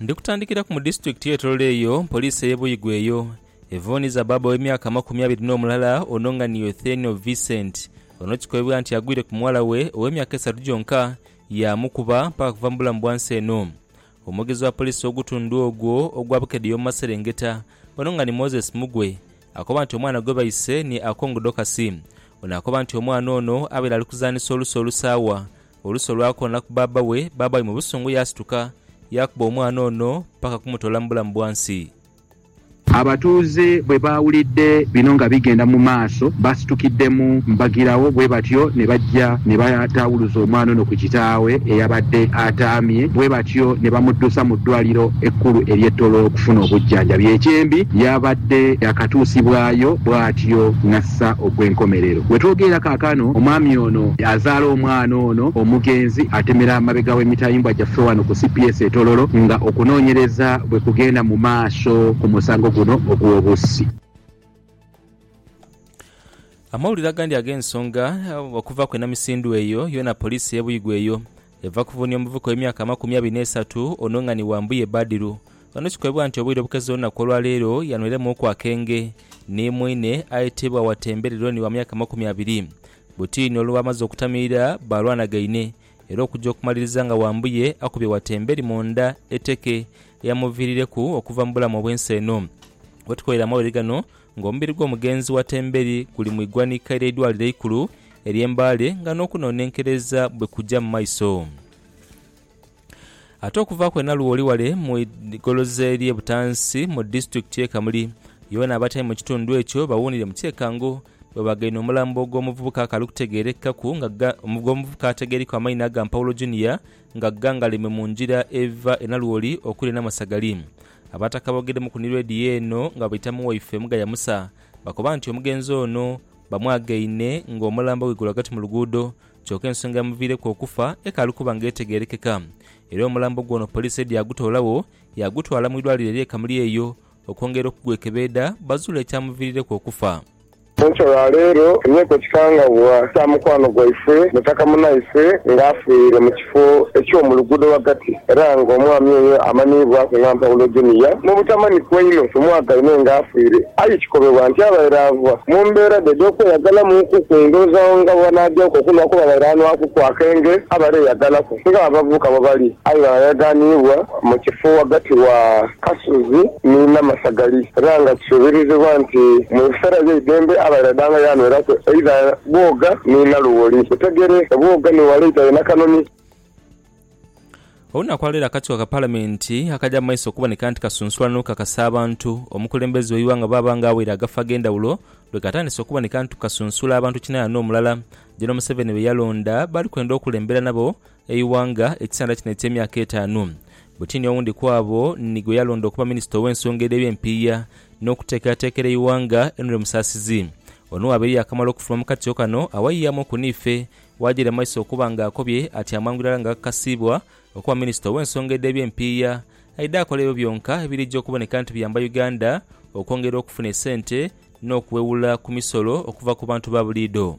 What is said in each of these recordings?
Ndi kutandikiraku mu disitulikiti ye Tororo eyo poliisi eye Buigwe eyo evuuniza bbaabba ow'emyaka amakumi abiri n'omulala ono nga ni Euthenial Vincent ono kikobibwa nti agwire ku muwala we ow'emyaka esatu gyonka yaamukuba mpaka kuva mu bulamu bwa nsi eno. Omwogezi wa poliisi ow'ogutundhu ogwo ogwa Bukedea omu maserengeta ono nga ni Moses Mugwe akoba nti omwana gwe baise ni Akong Dorcus. Ono akoba nti omwana ono abaire ali kuzanhisa oluso olusaawa Oluusi olwakoona ku bbaabba we, bbaabba we mu busungu yaasituka yaakuba omwana ono paka kumutoola mu bulamu bwa nsi. Abatuuze bwe baawulidde bino nga bigenda mu maaso, baasitukiddemu mbagirawo bwe batyo ne bajja ne bataawuluza omwana ono ku kitaawe eyabadde ataamye bwe batyo ne bamuddusa mu ddwaaliro ekkulu ery'e Toro okufuna obujjanjabi. Ekyembi yabadde yaakatuusibwayo bwatyo nga. okutuusa okw'enkomerero. Bwe twogeera kaakano, omwami ono azaala omwana ono omugenzi atemera mabega w'emitayimbwa gyaffe wano ku cps e Tororo nga okunoonyereza bwe kugenda mu maaso ku musango guno ogw'obussi. Amawulire agandi ag'ensonga okuva ku enamisindwa eyo yoona poliisi y'e Buigwe eyo Eva ku Vuni omuvuka ow'emyaka amakumi abiri n'esatu ono nga ni wa Mbuye Badiru. Ono kikoebwa nti obwire obukezo olunaku olwaleero yanweiremuuku akenge ni mwine ayetebwa Watembe Rironi wa myaka amakumi abiri. Butiini olwamaze okutamiira baalwanagaine era okuja okumaliriza nga Wambuye akubye Watembe eri mu nda eteke eyamuviirireku okuva mu bulamu obw'ensi eno. Wetukolera amawulire gano nga omubiri gw'omugenzi Watembe eri guli mu igwanika ery'eidwaliro eikulu Erye Mbale nga n'okunonenkereza bwe kuja mu maiso. Ate okuva kwe Nalwo oli wale mu igoloza erye Butansi mu disitulikiti ye Kamuli yoona abatali mu kitundu ekyo bawuunire mu kyekango bwe bagaine omulambo ogw'omuvubuka akali kutegerekekaku nga ogw'omuvubuka atageirikwa amaina aga Mpawulo Junior nga gghangaleme mu ngira eva e Nalwoli okuli e Namasagali. Abataka aboogedemu ku ni Radio eno nga baita mu waife Mugaya Musa bakoba nti omugenzi ono Bamwagaine ng'omulambo ghaigulu ghagati mu luguudo kyoka ensonga eyamuviireku okufa ekaali kuba nga etegeerekeka era omulambo gwe ono poliisi yaidha yaagutoolagho yaagutwala mu irwaliro ery'e Kamuli eyo okwongera okugwekebeedha bazuule ekyamuviirireku okufa. Enkya ya leero tufunyeeku ekikangabwa kya mukwano gwaifwe mutaka munaaife nga afiire mu Ku eky'omu luguudo ghagati, era nga omwami oyo amanhiibwaku nga Mpawulo Junior, mu butamanhiku einho tumwagaine nga afiire. Aye kikobebwa nti abaire ava mu mbeera dhe edh'okweyagalamuuku ku ndhoozagho nga bwebanaagyaku okunhwa kuba abaire anhwakuku akenge abaire eyagalaku nga abavubuka bwebali aye nga bayaganhiibwa mu kifo ghagati wa Kasozi ni Namasagali era nga kisobelezebwa nti mu biseera by'eidembe abaire danga yanweraku eidha Bwoga ni Naluwoli. Butegere, Bwoga ni wala eidha ye Nakanoni. Olunaku lwa leero akakiiko ka Palamenti akagya mu maiso okuboneka nti kasunsula n'okukakasa abantu omukulembeze w'eighanga oba aba ng'awaire agafo ag'endhawulo lwe katandise okuboneka nti kasunsula abantu kinayana omulala Gen Museveni be yalonda bali kwenda okulembera nabo eighanga ekisanda kino eky'emyaka etaanu. Butini owundi ku abo ni gwe yalonda okuba minisita ow'ensonga edh'eby'empiiya n'okuteekerateekera eighanga, Henry Musasizi. Ono abaire yaakamala okufuluma mu katyo kano awayiyamu oku n'ife, waajira mu maiso okuba nga akobye ati amangu irala nga akakasiibwa okuba minisita ow'ensonga edh'eby'empiiya, aidhe akole ebyo byonka ebiriija okuboneka nti biyamba Uganda okwongera okufuna esente n'okuwewula ku misolo okuva ku bantu ba buliidho.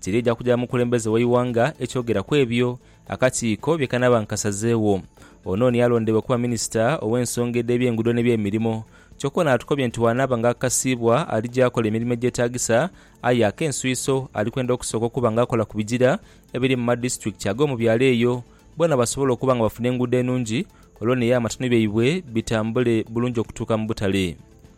Tiriidha kuja mukulembeze w'eighanga ekyogera ku ebyo akakiiko bye kanaaba nkasazeegho. Ono niye alondebwa okuba minisita ow'ensonga edh'ebyenguudo n'ebyemirimo kyokka ono atukobye nti bw'anaaba nga akakasiibwa alija akola emirimo egyetaagisa aye ak'enswiso ali kwenda okusooka okuba nga akola ku bigira ebiri mu madisiturikiti ag'omu byalo eyo boona basobole okuba nga bafuna enguudo enungi olwo n'eyo amatanu byaibwe bitambule bulungi okutuuka mu butale.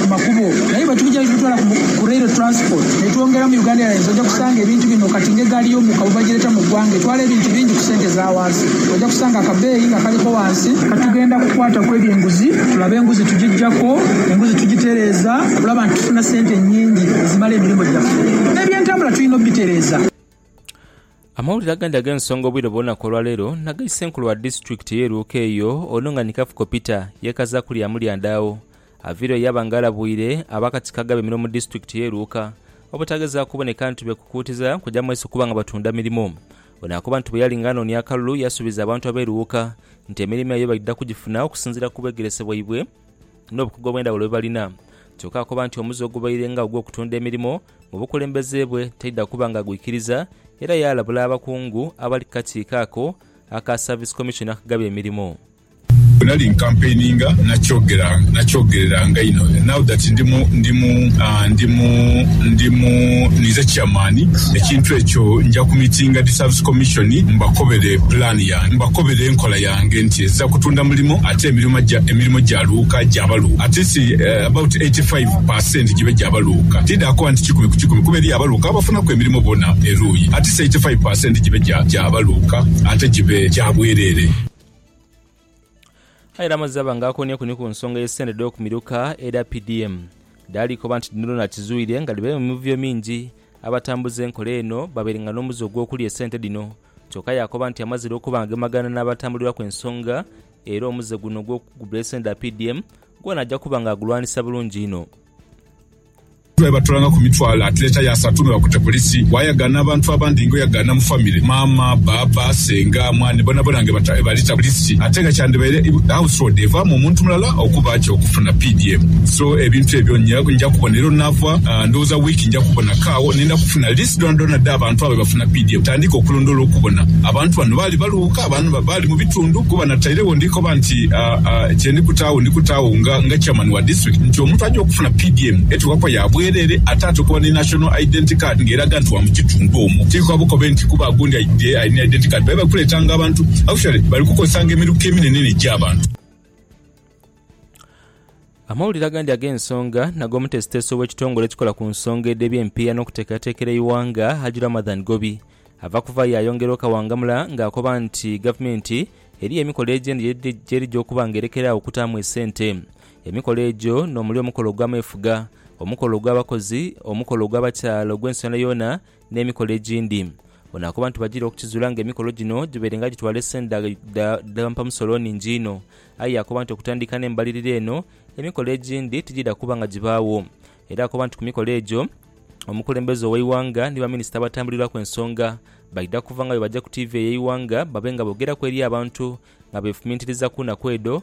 ku makubo naye bwetugya nitubitwala ku ku rail transport netwongera mu Uganda Airlines oja kusanga ebintu bino kati nga egaali y'omuka bwebagireta mu gwanga etwala ebintu bingi ku sente za wansi oja kusanga akabeeyi nga kaliko wansi. Katugenda kukwata ku eby'enguzi tulabe enguzi tugijako enguzi tugitereeza okulaba nti tufuna sente nyingi ezimala emirimu gyaffe n'ebyentambula tulina obitereeza. Amawulire agandi ag'ensonga obwire bwona ku olwaleero nagai Ssenkulu wa Disitulikiti ye Luuka eyo ono nga ni Kafuko Peter yekazaku lyamu lyandaagho Avira oyo yaba nga alabwire abakatiko agabemera omu disitulikiti ye Luuka obutagezaaku kuboneka nti beekukuutiza kuja mu Asia kuba nga batunda mirimo. Ono akoba nti bweyali nga anoonia akalulu yasuubiza abantu ab'e Luuka nti emirimo eyo baidha kugifuna okusinziira ku bwegerese bwaibwe n'obukugu obw'endhawulo bwebalina. Kyoka akoba nti omuze ogubaire nga ogw'okutunda emirimo mu bukulembeze bwe taidha kuba nga agwikiriza era yaalabula abakungu abali ku kakiiko ako aka Service Commission akagaba emirimo. Bwe nali nkampeininga, nakyogereranga inho. Now that ndi mu, ndi mu, ndi mu, ndi mu, ninze chairman, ekintu ekyo nja kumitinga Disservice Commission mbakobere plan yange, mbakobere enkola yange nti ezira kutunda mulimo ate emirimo gya, emirimo gya luuka gya baluuka. At least about eighty five per cent gibe gya baluuka. Tididha kuba nti kikumi ku kikumi kuba eriyo abaluuka abafunaku emirimo bona eruuyi. At least eighty five per cent gibe gya, gya baluuka ate gibe gya bwerere. Aye Ramazaba nga akonieku ni ku nsonga ye sente edho ku miruka edha PDM dhaali koba nti dhino dhona akizuire nga dhibaire mu mivuyo mingi abatambuza enkola eno babaire nga nomuze ogwokulya esente dhino kyoka yakoba nti amazire okuba nga gemagana nabatambulirwaku ensonga era omuze guno ogwokugula esente dha PDM gwona aja kuba nga agulwanisa bulungi inho. Bwebatulangaku mitwalo atileta yasatu nebakute polisi wayagana abantu abandi nga oyagana mu family maama, baaba, senga, mwani bonabona nga ebalita polisi ate nga kyandibaire house road evamu omuntu mulala okuba atya okufuna pdm so ebintu ebyo njakubona era onava ndowoza week njakubona ko agho nenda kufuna list dhonadhona dhabantu abo ebafuna pdm tandike okulondola okubona abantu bano baali baluuka oba baali mubitundu kuba natairegho ndikoba nti kyendikutaagho ndikutaagho nga chairman wa district nti omuntu aja okufuna na PDM etuwa kwa ya bwerere ate atukuwa ni National Identity Card nga eraga nti wa mu kitundu omwo. Tiri kwa bukobe nti kuba agundi aidye alina Identity Card baye bali kuletanga abantu. Actually bali kukozesanga emiruka eminenene egya abantu. Amawulire agandi ag'ensonga n'ag'omuteesiteesi ow'ekitongole ekikola ku nsonga edh'eby'empiiya n'okuteekerateekera eighanga Haji Ramadhan Gobi ava kuvaayo yayongera okawangamula nga akoba nti gavumenti eriyo emikola egyendi gyerija okuba nga erekera agho okutaamu esente Emikolo egyo n'omuli omukolo ogw'ameefuga, omukolo ogw'abakozi, omukolo ogw'abakyala ogw'ensonera yoona, n'emikolo egindi. Ono akoba nti bajiire okukizuula nga emikolo gino gibaire nga gitwala esente dha mpamusolo nhingi inho. Aye yakoba nti okutandika n'embalirira eno, emikolo egindi tigiidha kuba nga gibaagho. Era akoba nti ku mikolo egyo, omukulembeze ow'eighanga ni baminisita abatambulirwaku ensonga baidha kuva nga bwe baja ku tiivi ey'eighanga babe nga boogeraku eri abantu nga beefumintiriza ku naku edho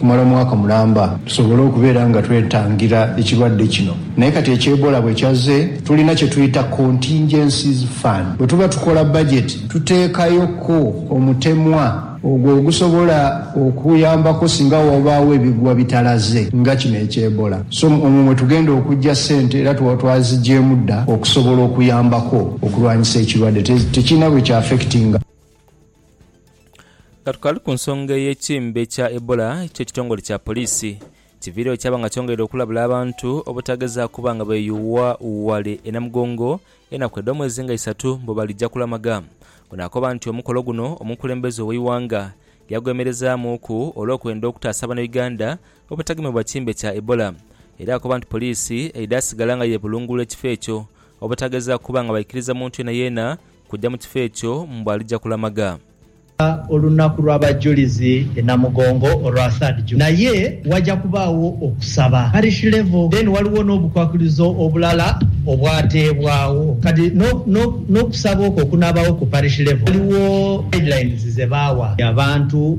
kumala omwaka mulamba tusobole okubeera nga twetangira ekirwadde kino naye kati ekya Ebola bwe kyazze tulina kye tuyita Contingencies Fund. Bwe tuba tukola bajeti tuteekayoko omutemwa ogwo ogusobola okuyambako singa wabaawo ebigwa bitalaze nga kino ekya Ebola. So omwo mwe tugenda okuggya ssente era tuba twaziggyemu dda okusobola okuyambako okulwanyisa ekirwadde. Tekirina bwe kya affectinga. Nga tukali ku nsonga ey'ekimbe kya Ebola kyo ekitongole kya poliisi kiviiregho kyaba nga kyongeire okulabula abantu obutagezaako kuba nga beeyuwa ghale e Namugongo enaku edh'omwezi nga isatu mbu balija kulamaga. Ono akoba nti omukolo guno omukulembeze ow'eighanga yagwemerezaamuuku olw'okwenda okutaasa banauganda obutagemebwa kimbe kya Ebola era akoba nti poliisi eidha sigala nga yeebulungulula ekifo ekyo obutagezaako kuba nga baikiriza muntu yeenayeena Kuja mu kifo ekyo mbu alija kulamaga. Lira olunaku lw'abajulizi e Namugongo olwa third June naye waja kubaawo okusaba parish level then waliwo n'obukwakulizo obulala obwateebwawo kati n'okusaba okwo okunaabaawo ku parish level waliwo guidelines zebaawa abantu.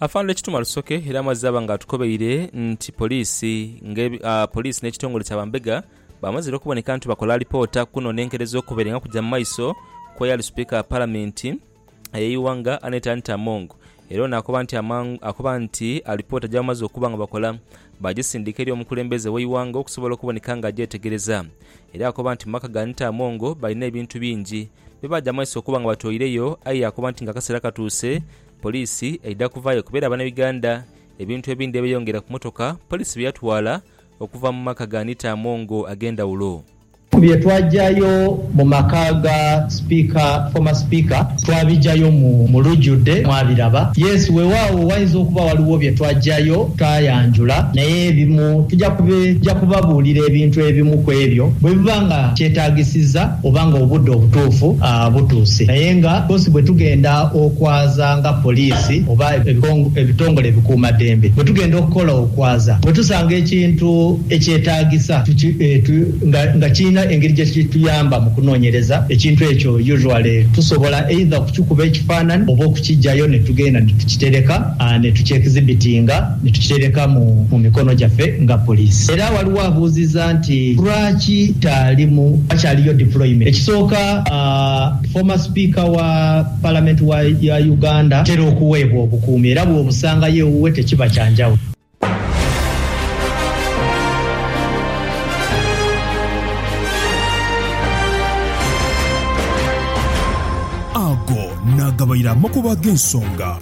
Afande Kituma Rusoke era amazze aba nga atukobeire nti poliisi nge poliisi n'ekitongole kya bambega bamazire okuboneka nti bakola alipoota kuno n'enkerezo okubaire nga kugya mu maiso kw'eyali sipiika wa palamenti ey'eighanga Annet Anita Among era ono akoba nti amangu akoba nti alipoota gyebamaze okuba nga bakola baagisindika eri omukulembeze w'eighanga okusobola okuboneka nga agyetegereza era akoba nti mu maka ga Anita Among balina ebintu bingi Byo baja mu maiso okuba nga batoireyo aye yaakoba nti ng'akaseera katuuse poliisi eidha kuvaayo kuba era Banauganda ebintu ebindhi ebeyongera ku mmotoka poliisi bye yatwala okuva mu maka ga Anita Among ag'endhawulo. Ku bye twajayo mu maka ga Sipiika, former Speaker, twabijayo mu mu lujudde mwabiraba. Yes, weewaawo wayinza okuba waliwo bye twajayo tutayanjula naye ebimu tuja kubabuulira ebintu ebimu ku ebyo bwe biba nga kyetaagisiza. oba nga obudde obutuufu butuuse. Naye nga twosi bwe tugenda okwaza nga poliisi oba ebitongole ebikuumaddembe bwe tugenda okukola okwaza, bwe tusanga ekintu ekyetaagisa nga kirina engeri gye kituyamba mu kunoonyereza ekintu ekyo, usually tusobola either okukikuba ekifaanani oba okukiggyayo ne tugenda ne tukitereka ne tukyekizibitinga. ni tukitereka mu mu mikono gyaffe nga poliisi. Era waliwo abuuziza nti lwaki taalimu wakyaliyo deployment. Ekisooka former speaker wa parliament wa ya Uganda atera okuweebwa obukuumi era bwobusangayo ewuwe tekiba kya njawulo. Ago n'agabaire amakubo ag'ensonga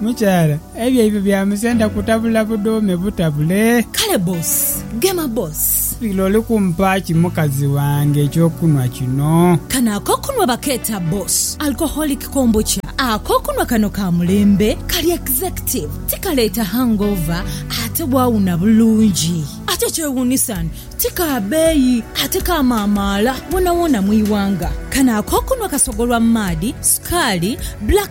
Mukyala, ebyo ibyo bya musenda kutabula budhuume butabule. Kale boss, gema boss. Lira oli kumpa ki mukazi wange eky'okunhwa kino? Kano ak'okunhwa bakeeta boss alcoholic kombucha. Ak'okunhwa kano ka mulembe, kali executive, tikaleeta hangover ate bwawuna bulungi. Ate ekyewuunisan ti ka beeyi ate kamaamaala woonawoona mu ighanga. Kano ak'okunhwa kasogolwa maadhi, sukaali, black.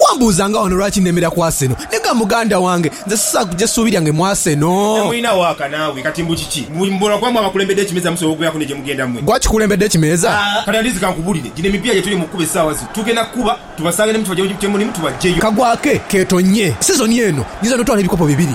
Wambuuza nga wano lwaki nemera ku Arsenal? Nega muganda wange, nze sisaagha kugya suubi lyange mu Arsenal. Temulina waaka naawe. Kati mbu kiki? Mbu mbula kuba mwe abakulembedde ekimeeza musobola okubeeraku ne gye mugenda mwe? Gwe akikulembedde ekimeeza? Kati Andizi kankubulire, gino emipiira gye tuli mu kukuba essaawa zino, tugenda kukuba tubasange ne mwe tubaggye gye mulimu tubaggyeyo. Kagwake keetonnye. Sizoni eno nyinza n'otwala ebikopo bibiri.